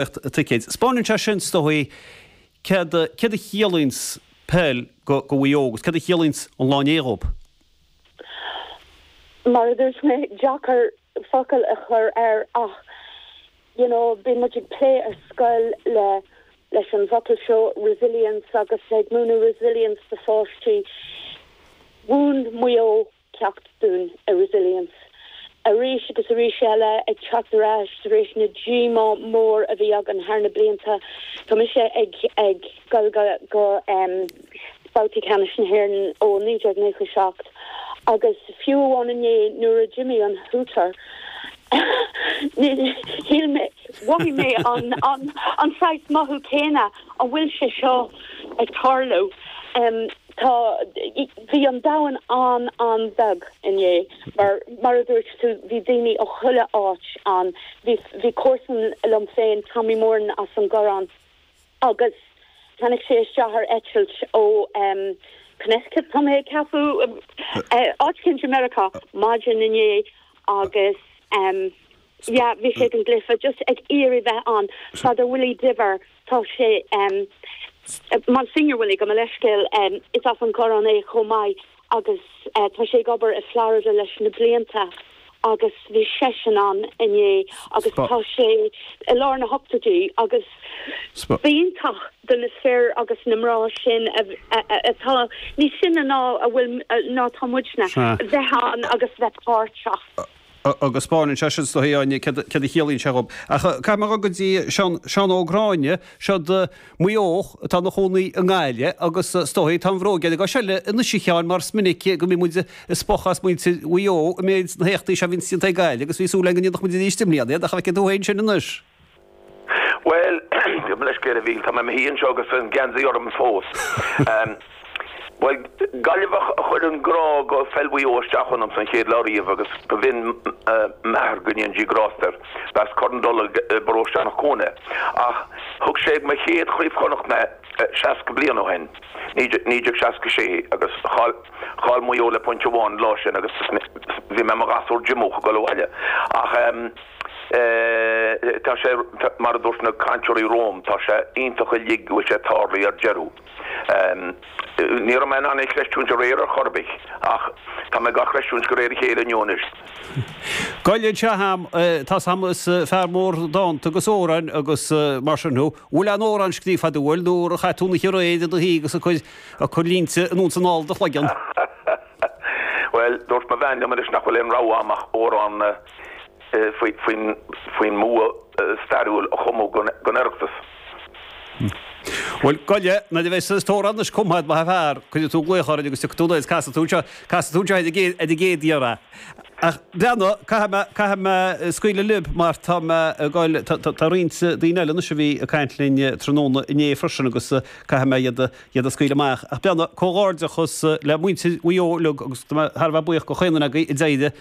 Acht ticéid. 'Spánann sé sin, is dóigh, céard a, céard a chiallaíonn peil go, go Mhaigh Eo agus céard a chiallaíonn an lá inné dhóibh? Mar a dúirt mé, deacair focal a chur air ach, you know, bíonn muid ag plé ar scoil le, leis an bhfocal seo, resilience, agus ag múineadh resilience do pháistí. Mhúin Maigh Eo ceacht dúinn i Resilience arís agus arís eile, ag teacht ar ais tar éis na díomá mór a bhí againn thar na blianta. Tá mise ag ag goil go go babhtaí Ceannais na hÉireann ó 1997 agus fiú amháin inné nuair a d'imigh an Hooter shíl mé, mhothaigh mé an an an sórt mothú céanna, an bhfuil sé seo ag tarlú? Tá, bhí an domhan an-an-bheag inné mar, mar a dúirt tú, bhí daoine ó chuile áit ann. Bhí, bhí comharsan liom féin, Tommy Moran as an gCorrán agus tháinig sé isteach ar eitilt ó em, Connecticut tá mé ag ceapadh, áit eicínt i Meiriceá maidin inné agus em, yeah bhí sé ag an gcluife just ag iarraidh bheith ann Father Willie Diver tá sé em Monsignor Willie gabh mo leithscéal em is as an gCorrán é chomh maith agus eh tá sé ag obair i Florida leis na blianta agus bhí seisean ann inné agus tá sé i lár na hochtóidí agus b'iontach do na fir agus na mná sin a a atá níos sine ná a bhfuil ná atá muidne bheith ann agus bheith páirteach. agus 'spánann sé sin is dóigh a Áine, céard a chiallaíonn sé dhóibh? Ach caithfidh mé a dhul go dtí Seán, Seán Ó Gráinne, as Maigh Eo, atá ina chónaí i nGaillimh agus is dóigh, tá an bhróg ar an gcois eile anois a Sheáin mar is minic go mbíonn muid ag spochadh as muintir Mhaigh Eo i measc na héachtaí seo a bhíonns déanta ag Gaillimh agus bhí súil agam go ndéanfadh muid arís i mbliana é ach an bhfeiceann tú féin sin anois? Bhuel, gabh mo leithscéal bhuel, tá mé i mo shuí anseo agus an geansaí orm fós. Bhuel, Gaillimheach a chuir an grá do pheil Mhaigh Eo isteach ionamsa an chéad lá riamh agus b'in m'athair, go ndéana Dia grásta air, b'as Corr an Dola i bparóiste Eanach Cuain ach thug sé ag mo chéad Chraobh Chonnacht mé 60 bliain ó shin, 1966 agus chaill Maigh Eo le pointe amháin an lá sin agus bhí mé i mo ghasúr díomách ag dul abhaile ach. Tá sé, mar a dúirt na cainteoirí romham, tá sé iontach uilig go bhfuil sé tarlaithe ar deireadh. Ní raibh mé in ann é a chreistiúint aréir ar chor ar bith ach tá mé dhá chreistiúint de réir a chéile inniu anois. Gabh i leith a Sheáin, tá 's agam is fear mór dánta agus amhráin agus mar sin thú. Bhfuil aon amhrán scríofa agat bhfuil nuair a chaith tú an oíche aréir i do shuí agus ag cur línte anonn is anall i do chloigeann? Bhuel, dúirt mo bhean liom anois nach bhfuil aon rogha agam ach amhrán a. faoin mbua stairiúil a chumadh don Oireachtas. Bhuel, go le, nuair a bheidh tú istigh arís anois chomh maith, a fhear, cuirfidh tú glaoch orainn agus casfaidh tú, casfaidh tú anseo, casfaidh tú anseo ar an gcéad iarraidh. Ach breathnaigh, caithfidh mé, caithfidh mé scaoileadh libh mar tá mé ag goil, tá, tá, tá roinnt daoine eile anois a bhí ag caint linn tráthnóna inné freisin agus caithfidh mé iad a, iad a scaoileadh amach. Ach breathnaigh, comhghairdeachas le muintir Mhaigh Eo uilig agus tá mé thar a bheith buíoch go raibh caoi agaibh a d'éirigh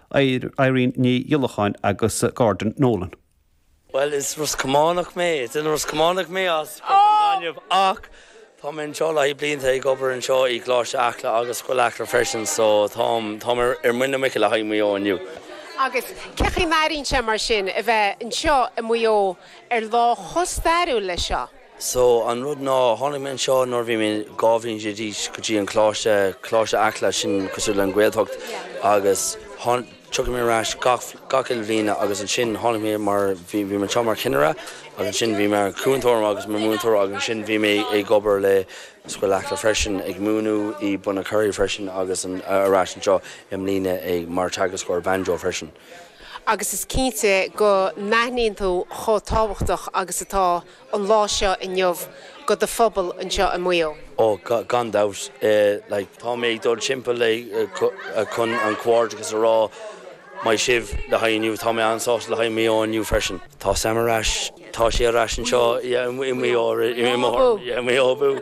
Irene Ní Ghiolacháin agus Gordon Nolan. Bhuel, is Ros Cománach mé, is Ros Cománach mé as Cnoc an Ghainimh ach tá mé anseo le haghaidh blianta ag obair anseo i gColáiste Acla agus Scoil Acla freisin so táim, táim ar muin na muice le haghaidh Maigh Eo inniu. Agus cé chaoi a n-airíonn sé mar sin a bheith anseo i Maigh Eo ar lá chomh stairiúil leis seo? So, an rud ná, tháinig mé anseo nuair a bhí mé dhá bhliain déag d'aois go dtí an Coláiste, Coláiste Acla, sin cosúil le an Ghaeltacht agus tháin, tiocfaidh mé ar ais gach, gach uile bhliain agus ansin tháinig mé mar, bhí, bhí mé anseo mar chinnire agus ansin bhí mé mar chúntóir agus mar mhúinteoir agus ansin bhí mé ag obair le Scoil Acla freisin ag múineadh i Bunacurry freisin agus an, ar ais anseo i mbliana ag, mar teagascóir banjo freisin. agus is cinnte go n-aithníonn tú chomh tábhachtach agus atá. an lá seo inniu go do phobal anseo i Maigh Eo. Ó, gan dabht, like. Tá mé ag dul timpeall like chun an comhghairdeachas a rá maith sibh le haghaidh inniu. Tá mé an-sásta le haghaidh Maigh Eo inniu freisin. Tá Sam ar ais, tá sé ar ais anseo yeah i Maigh Eo i mo thurn yeah i Maigh Eo abú!